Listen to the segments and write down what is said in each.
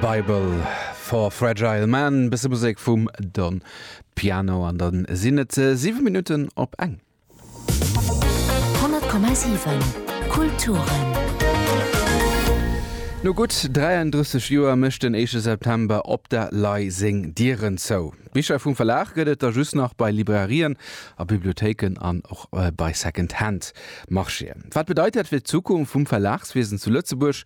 Bible for Fragile Man, bësse Musek vum Don Piano an dann sinn et 7 Minutten op eng. 100,7 Kulturen. No gutt 33 Joer mécht den éischte September Op der Lay seng Dieren zou. Bicher vum Verlag gëtt et der just nach bei Librairien a Bibliothéiken an och bei Second Hand. Marchéen. Wat bedeit dat fir d'Zukunft vum Verlagswiesen zu Lëtzebuerg?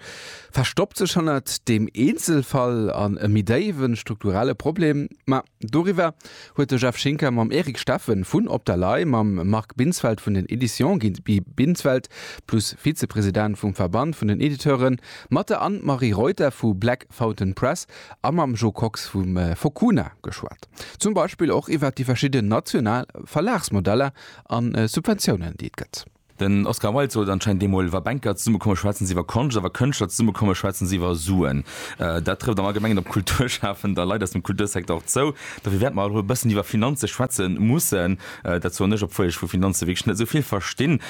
Verstoppt sech hannert deem Eenzelfall an e méi déiwe strukturelle Problem? Ma doriwwer huet de Jeff Schinker mam Eric Steffen vun Op der Lay, mam Marc Binsfeld vun den Editions Guy Binsfeld plus Vizepresident vum Verband vun den Editeuren, mat der Anne-Marie Reuter vu Black Fountain Press a mam Jo Kox vu Fokuna geschwat. Zum Beispill och iwwert déi verschidden national Verlagsmodeller A Subventiounen, déi et gëtt. Den Oscar Wilde sot anscheinend eemol, Wa Banker zesummekomme schwätzen se iwwer Konscht, a wa Kënschtler zesummekomme schwätzen se iwwer Suen. Dat trëfft am Allgemengen op Kulturschafend a Leit aus dem Kultursecteur och zou. Dofir wäerte mer alt erëm e bëssen iwwer Finanze schwätze mussen. Dat soen ech, obwuel ech vu Finanze wierklech net esou vill verstinn.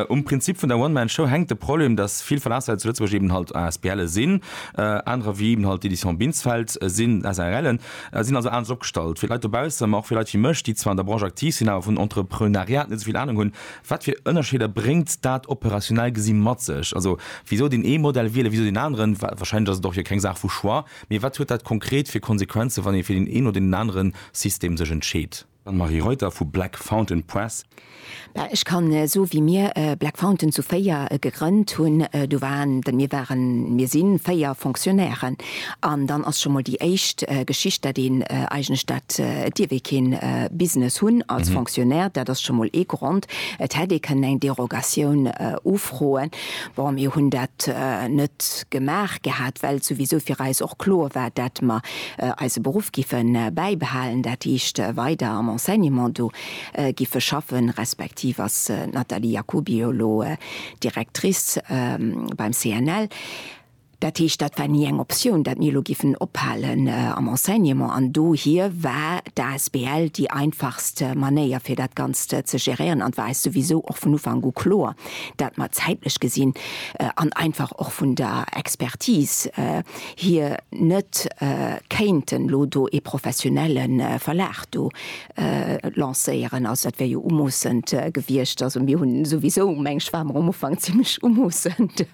Um Prinzip vun der One-Man-Show hänkt de Problem, dass vill Verlagshaise zu Lëtzebuerg eben halt ASBLe sinn, anerer wéi eben halt d'Éditions Binsfeld sinn SARLen. sinn also anescht opgestallt wéi Leit dobaussen, ma och wéi Leit wéi mech, déi zwar an der Branche aktiv sinn, awer vun Entrepreunariat net esouvill Anung hunn. Wat fir Ënnerscheeder bréngt dat operationell gesi mat sech? Also wisou deen ee Modell wielen, wisou deen aneren? Wahrscheinlech ass et och jo keng Saach vu Choix, mee wat huet dat konkret fir Konsequenzen, wann ee fir deen een oder deen anere System sech entscheet? D'Anne-Marie Reuter vu Black Fountain Press. Mä ech kann soe wéi mir Black Fountain zu véier gegrënnt hunn, do waren, mir waren, mir si véier Fonctionnairen an dann ass scho mol déi éischt Geschicht, dat een eigentlech, dat dierf ee kee Business hunn als Fonctionnaire, dat ass scho mol ee Grond. Et hätt ee kënnen eng Derogatioun ufroen. Bon, mir hunn dat net gemaach gehat, well souwisou fir eis och kloer war, dat mer eise Beruff giffe bäibehalen, dat heescht weider am Enseignement do giffe schaffen, respektiv ass d'Nathalie Jacoby jo elo Directrice beim CNL. Dat heescht, dat war ni eng Optioun, dat mir elo giffen ophalen am Enseignement. An dohier war d'asbl déi einfachst Manéier, fir dat Ganzt ze geréieren. An et war eis souwisou och vun Ufank u kloer, dat mer zäitlech gesinn an einfach och vun der Expertise, hir net kéinten elo do ee professionelle Verlag do lancéieren. Also dat wär jo umoossend gewiescht. Also mir hunn souwisou, mengen ech, ware mer um Ufank zimmlech umoossend,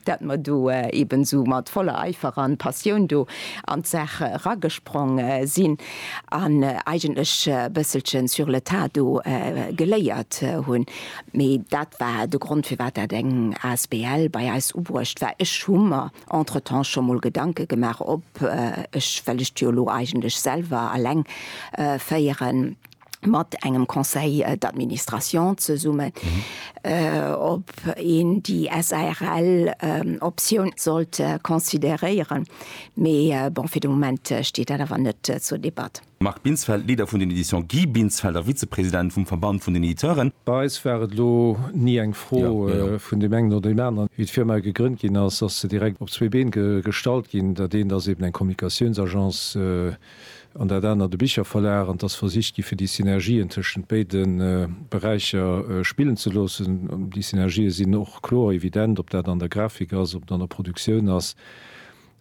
dat mer do eeben esou mat voller Eifer an Passioun do an d'Saach eragesprong sinn an eigentlech e bësselchen sur le tas do geléiert hunn. Mee dat war de Grond, firwat dat eng asbl bei eis ubruecht war. Ech hu mer. Entretemps scho mol Gedanke gemaach op ech, well ech jo lo eigentlech selwer alleng féieren, mat engem Conseil d'administration zesummen, ob een déi SARL Optioun sollt consideréieren, mee bon, fir de Moment steet dat awer net zur Debatt. Marc Binsfeld, Leader vun den Editions Guy Binsfeld a Vizepresident vum Verband vun den Editeuren. Bei eis war et elo ni eng Fro vun deem engen oder deem aneren. Wéi d'Firma gegrënnt ginn ass, ass se direkt op zwee Been gestallt ginn. Dat eent ass eben eng Kommunikatiounsagence an dat anert e Bicherverlag. An et ass versicht gi fir déi Synergien tëschent béide Beräicher spillen ze loossen. Déi Synergië sinn och kloer, evident, ob dat an der Grafik ass, ob et an der Produktioun ass.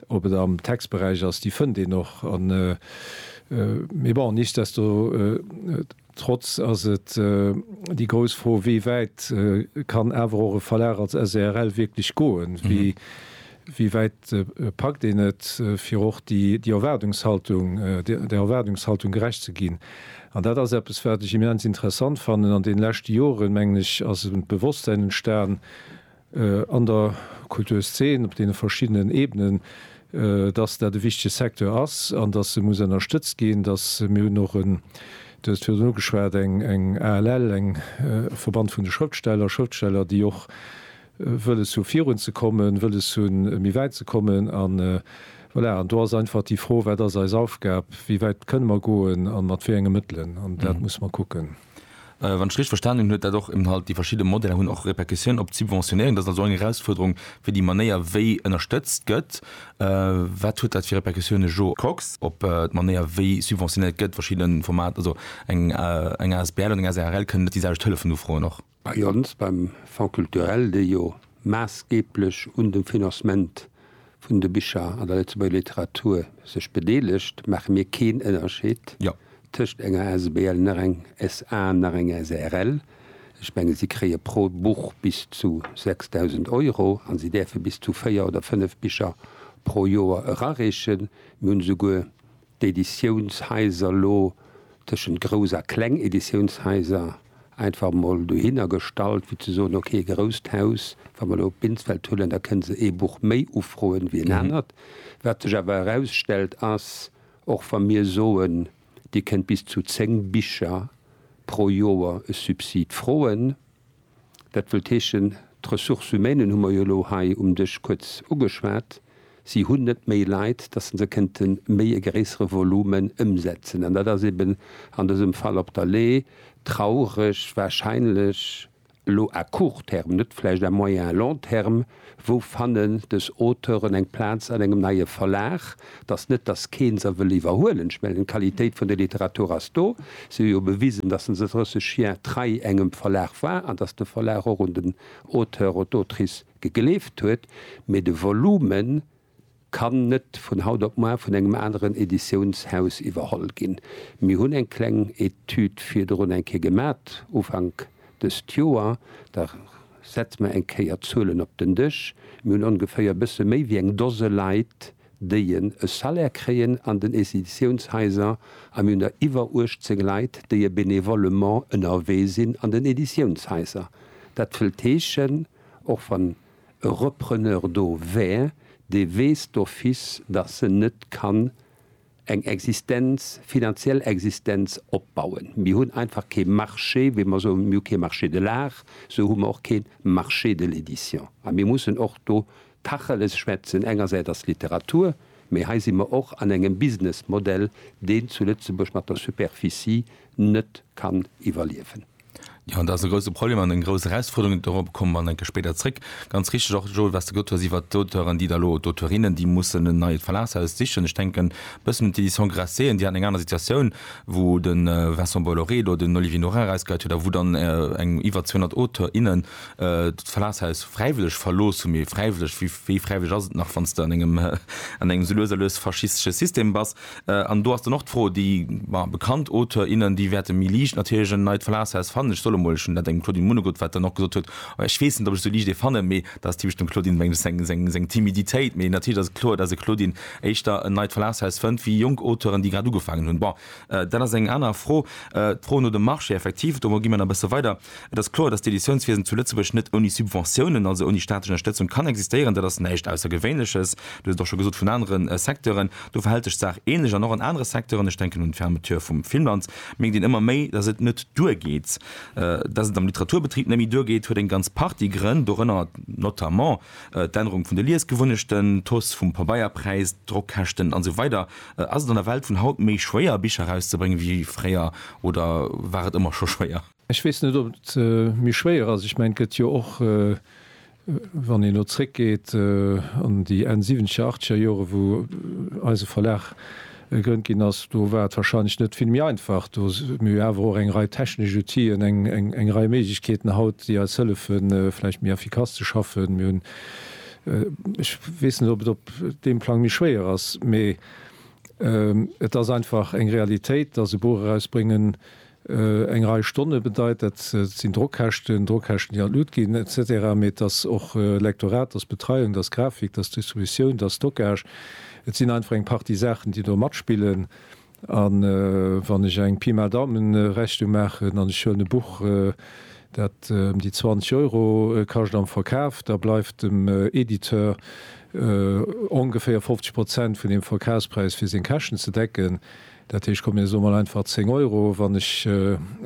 Ob et am Textberäich ass, déi fënnt een och. Mee bon, nichtsdestotrotz ass et déi grouss Fro, wéi wäit kann awer och e Verlag als SRL wierklech goen? Wéi wäit packt een et, fir och där Erwaardungshaltung gerecht ze ginn? An dat ass eppes, wat ech immens interessant fannen. An deene leschte Joren, mengen ech, ass e Bewosstsäin entstan, an der Kulturszen op deene verschiddenen Ebenen, dass dat e wichtege Secteur ass an dass e muss ënnerstëtzt ginn, dass, mir hunn och en, Du hues et virdrun ugeschwat, eng ALL, eng Verband vun de Schrëftsteller, Schrëftsteller, déi och wëlles hu virun ze kommen, wëlles hunn méi wäit ze kommen an, voilà, an do ass einfach déi Fro, wat ass eis Aufgab, wéi wäit kënne mer goen a mat wéi enge Mëttelen, an dat muss mer kucken. Wann ech richteg verstanen hunn, huet dat och Inhalt, déi verschidde Modeller hunn och Répercussiounen op d'Subventionéieren. Dat ass also eng Erausfuerderung fir déi Manéier wéi ënnerstëtzt gëtt. Wat huet dat fir Répercussiounen, Jo Kox? Op d'Manéier wéi subventionéiert gëtt, verschidde Formater, also eng asbl an eng SARL kënnen net déi selwecht Hëllefen ufroen och? Bei ons, beim Fonds culturel, dee jo maassgeeblech un dem Financement vun de Bicher an der Lëtzebuerger Literatur sech bedeelegt, maache mir keen Ënnerscheed tëscht enger Asbl, nach eng SA, nach eng SARL. Ech menge si kréie pro Buch bis zu 6.000 Euro a si däerfe bis zu véier oder fënnef Bicher pro Joer erareechen. Mir hunn esouguer d'Editiounshaiser lo tëschent grouss a kleng Editiounshaiser einfach emol dohinner gestallt, fir ze soen, ok, e grousst Haus, wa mer elo Binsfeld huelen, da kënne se ee Buch méi ufroen wéi en anert. Wat sech awer erausstellt, ass, och wa mir soen, Dir kënnt bis zu zéng Bicher pro Joer e Subsid froen, Dat wëllt heeschen, d'Ressources humaines hu mer jo elo hei um Dësch kuerz ugeschwat, si hunn net méi Leit, dass se kënnte méi e gréissere Volume ëmsetzen. An dat ass eeben an dësem Fall op der Lay traureg, wahrscheinlech elo à court terme, net vläicht à moyen, long terme, Wou fannen dës Auteuren eng Plaz an engem neie Verlag? Et ass net, datt keen se wëll iwwerhuelen. Ech mengen, d'Qualitéit vun der Literatur ass do. Si hu jo bewisen, datt se 30 Jier trei engem Verlag war an datt de Verlag och un den Auteur oder d'Autrice gegleeft huet. Mee de Volumen Kann net vun haut op muar vun engem aneren Editiounshaus iwwerholl ginn. Mir hunn eng kleng Etüd virdrun eng Kéier gemat, Ufank dëst Joer. Da setze mer eng Kéier d'Zuelen op den Dësch. Mir hunn ongeféier e bësse méi wéi eng Dose Leit, déi en e Salaire kréien an den Editiounshaiser, a mir hunn der iwwer 18 Leit, déi e bénévolement ënnerwee sinn an den Editiounshaiser. Dat wëllt heeschen, och wann. e Repreneur do wär, dee weess d'office, datt se net kann eng Existenz, finanziell Existenz opbauen. Mir hunn einfach kee Marché, wéi mer soen, mir hu kee Marché de l'art, esou hu mer och kee Marché de l'édition. A mir mussen och do Tacheles schwätzen, engersäits ass d'Literatur, mee hei si mer och an engem Businessmodell, deen zu Lëtzebuerg mat der Superficie net kann iwwerliewen. Jo, dat ass e grouse Problem an eng grouss Erausfuerderung. Dorobber komme mer enke spéider zréck. Ganz richtig och, Joel, wat s de gesot hues iwwert d'Auteuren, déi da elo, oder Auteurinnen, déi mussen en neit Verlagshaus sichen. Ech denken e bëssen un d'Éditions Grasset, déi haten eng aner Situatioun, wou de Vincent Bolloré do den Olivier Norin erausgeheit huet a wou dann eng iwwer 200 Auteurs, innen d'Verlagshaus fräiwëlleg verlooss hunn. Mee fräiwëlleg, wéi fräiwëlleg ass et nach, wann s de an engem, an engem esou lues a lues faschistesche System bass? An do ass dann och d'Fro, déi, ma bekannt Auteur, innen, déi wäerte méi liicht natierlech en neit Verlagshaus fannen. Ech soll emol, ech hunn dat engem Claudine Munnegutt, wat dann och gesot huet, ech weess net, ob ech sou liicht ee fannen, mee dat ass typesch dem Claudine menglegs seng, seng Timiditéit, mee natierlech ass et kloer, dass e Claudine éischter en neit Verlagshaus fënnt wéi jonk Auteuren, déi grad ugefaangen hunn. Bon, dat ass eng aner Fro. D'Fro no dem Marché, effektiv, do gi mer nach e bësse weider. Et ass kloer, datt d'Editiounswiesen zu Lëtzebuerg net ouni Subventiounen, also ouni staatlech Ënnerstëtzung, kann existéieren. Dat ass näischt Aussergewéinleches. Dir hutt et och scho gesot vun anere Secteuren. Do verhält sech d'Saach änlech an och an anere Secteuren. Ech denken un d'Fermeture vum Filmland. Mierkt een ëmmer méi, datt et net duergeet. Datt et am Literaturbetrib net méi duergeet, huet eng ganz Partie Grënn, dorënner notamment d'Ännerung vun de Liesgewunnechten, d'Hausse vum Pabeierpräis, d'Drockkäschten a sou weider. Ass et an der Welt vun haut méi schwéier, Bicher erauszebréngen, wéi fréier oder war et ëmmer scho schwéier? Ech weess net, ob et méi schwéier ass. Ech mengen, et gëtt jo och, wann een elo zréckgeet an déi Enn siwwenzeger, achtzeger Jore wou eise Verlag gegrënnt ginn ass, do war et warscheinlech net vill méi einfach. Do hu mir awer och eng Rei technesch Outile, eng Rei Méiglechkeeten haut, déi eis hëllefe vläicht méi effikass ze schaffen. Mir hunn, ech weess net, ob et op deem Plang méi schwéier ass, mee et ass einfach eng Realitéit, datt e Buch erausbréngen Eng Rei Stonne bedeit, dat sinn Drockkäschten, Drockkäschten, déi an d'Lut ginn, et cetera. Mee et ass och Lektorat, et ass Betreiung, et ass Grafik, et ass Distributioun, et ass Stockage. Et sinn einfach eng Partie Saachen, déi do matspillen. A wann ech eng Pi mal Daumen-Rechnung maachen an ech huelen e Buch, dat ëm déi 20 Euro kascht am Verkaf, da bleift dem Editeur ongeféier 50 Prozent vun deem Verkafspräis, fir seng Käschten ze decken. Dat heescht, komm mir soe mol einfach 10 Euro, wann ech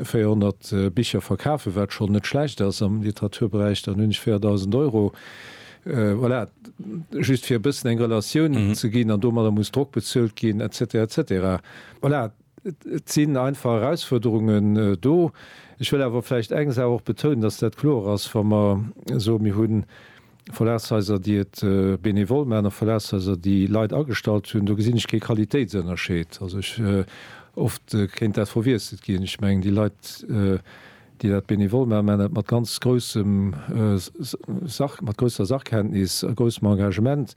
400 Bicher verkafen, wat schonn net schlecht ass am Literaturberäich, dann hunn ech 4.000 Euro. Voilà, just fir e bëssen eng Relatioun ze ginn. An domadder muss Drock bezuelt ginn et cetera et cetera. Voilà, et sinn einfach Erausfuerderungen do. Ech wëll awer vläicht eng Saach och betounen, dass dat kloer ass, wa mer soe mir hunn, Verlagshaiser, déi et benevol maachen, a Verlagshaiser, déi Leit agestallt hunn, do gesinn ech kee Qualitéitsënnerscheed. Also ech, oft kéint dat verwiesselt ginn. Ech mengen, déi Leit, déi dat benevol maachen, maachen dat mat ganz groussem Sach, mat grousser Sachkenntnis a groussem Engagement.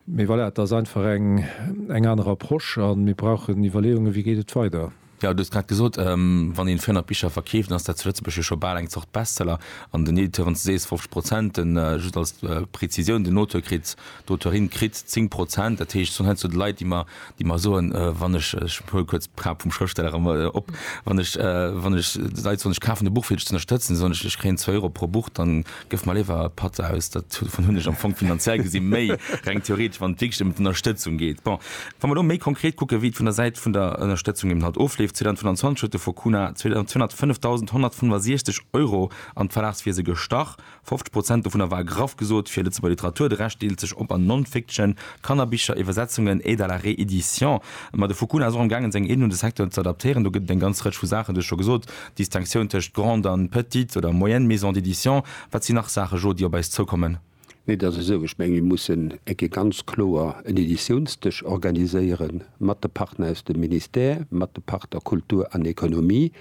Mee voilà, et ass einfach eng aner Approche a mir brauchen Iwwerleeungen, wéi geet et weider. Jo, du hues grad gesot, wann een 400 Bicher verkeeft, dann ass dat zu Lëtzebuerg jo scho bal eng Zort Bestseller. An den Editeuren, s du sees 50 Prozent, den, just als Prezisioun, den Auteur kritt, d'Auteurin kritt 10 Prozent. Dat heescht, s sinn heiansdo Leit, déi mer, déi mer soen, wann ech, ech huele kuerz d'Fra vum Schrëftsteller erëm op, wann ech, wann ech, Leit soen, ech kafen e Buch fir dech z'ënnerstëtzen, soen ech, ech kréien zwou Euro pro Buch, dann, Gëff mer léiwer e Patt aus. Dat dovun hunn ech am Fong finanziell gesi méi, reng theoretesch, wann et wierklech ëm d'Ënnerstëtzung geet. Bon, wa mer elo méi konkret kucken, wéi et vun der Säit vun der Ënnerstëtzung eben halt ofleeft, 2025 huet de Fonds Cuna 205.165 Euro an d'Verlagswiese gestach. 50 Prozent dovunner war graff gesot fir Lëtzebuerger Literatur, de Rescht deelt sech op an Non-Fiction, Kannerbicher, Iwwersetzungen, Aide à la réédition. Ma de Fonds Cuna ass och am gaangen, seng Aiden un de Secteur z'adaptéieren. Do gëtt et eng ganz Rëtsch vu Saachen, du hues scho gesot, Distinctioun tëscht grande an petite oder moyenne maison d'édition, wat sinn nach Saache Jo, déi op eis zoukommen? Nee, et ass esou, ech menge mir mussen eng Kéier ganz kloer en Editiounsdësch organiséiere mat de Partner aus dem Ministère, mat de Partner Kultur an Economie.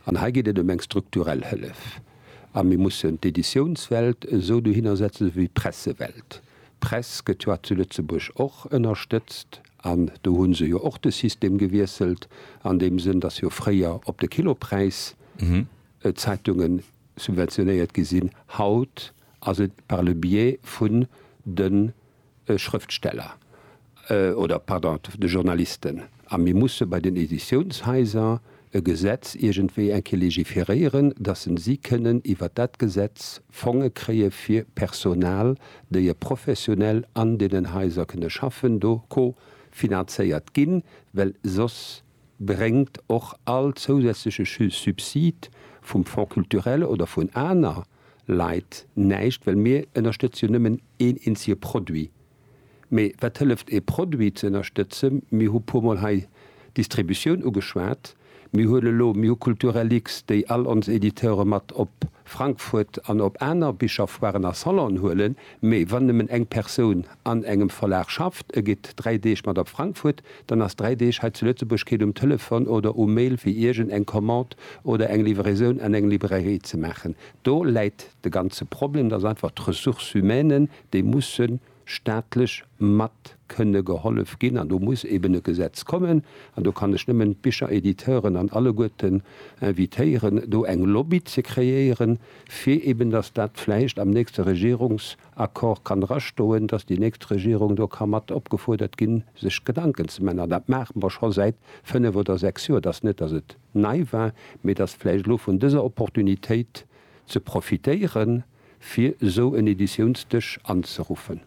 An hei geet et ëm eng strukturell Hëllef. A mir mussen d'Editiounswelt esou dohinner setzen, esou wéi d'Pressewelt. D'Press gëtt jo zu Lëtzebuerg och ënnerstëtzt. An do hu se jo och de System gewiesselt an deem Sënn, datt jo fréier op de Kilopräis d'Zeitunge subventionéiert gi sinn. Haut ass et par le biais vun de Schrëftsteller oder, pardon, de Journalisten. A mir musse bei den Editiounshaiser e Gesetz iergendwéi eng Kéier légiféréieren, dass en si kënnen iwwert dat Gesetz Fonge kréie fir Personal, déi e professionell an deenen Haiser kënne schaffen, do co finanzéiert ginn, well soss bréngt och all zousätzleche Subsid vum Fonds culturel oder vun aner Leit näischt, well mir ënnerstëtze jo nëmmen een eenzege Produit. Mee wat hëlleft ee Produit ze ënnerstëtzen? Mir hu puer mol hei d'Distributioun ugeschwat. Mir hunn elo, mir hu Kulturellix, déi all ons Editeure mat op Frankfurt an op aner Bicherfoiren a Salonen huelen. Mee wann nëmmen eng Persoun an engem Verlag schafft, e geet dräi Deeg mat op Frankfurt, dann ass dräi Deeg hei zu Lëtzebuerg keen um Telefon oder um Mail fir iergend eng Commande oder eng Livraison an eng Librairie ze maachen. Do läit de ganze Problem, dass einfach d'Ressources humaines, déi musse staatlech mat kënne gehollef ginn an do muss eben e Gesetz kommen. An do kann ech nëmmen d'Bicheréditeuren an alleguerten invitéieren, do eng Lobby ze kreéieren, fir eben dass dat vläicht am nächste Regierungsaccord kann drastoen, dass déi nächst Regierung do ka mat opgefuerdert ginn, sech Gedanken ze man. An dat maache mer scho säit fënnf oder sechs Joer. Et ass net, dass et nei war, mee et ass vläicht elo vun dëser Opportunitéit ze profitéieren, fir esou en Editiounsdësch anzeruffen.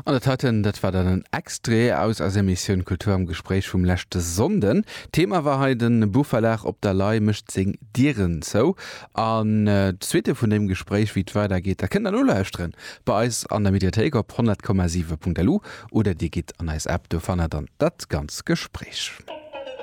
An dat heiten, dat war dann en Extrait aus eiser Emissioun Kultur am Gespréich vum leschte Sonnden. Thema war hei, De Buchverlag Op der Lay mécht seng Dieren zou. An d'Suite vun deem Gespréich, wéi et weider geet, dat kënnt der nolauschteren bei eis an der Mediathéik op 100,7.lu oder dir gitt an eis App, do fannt der dann dat ganz Gespréich.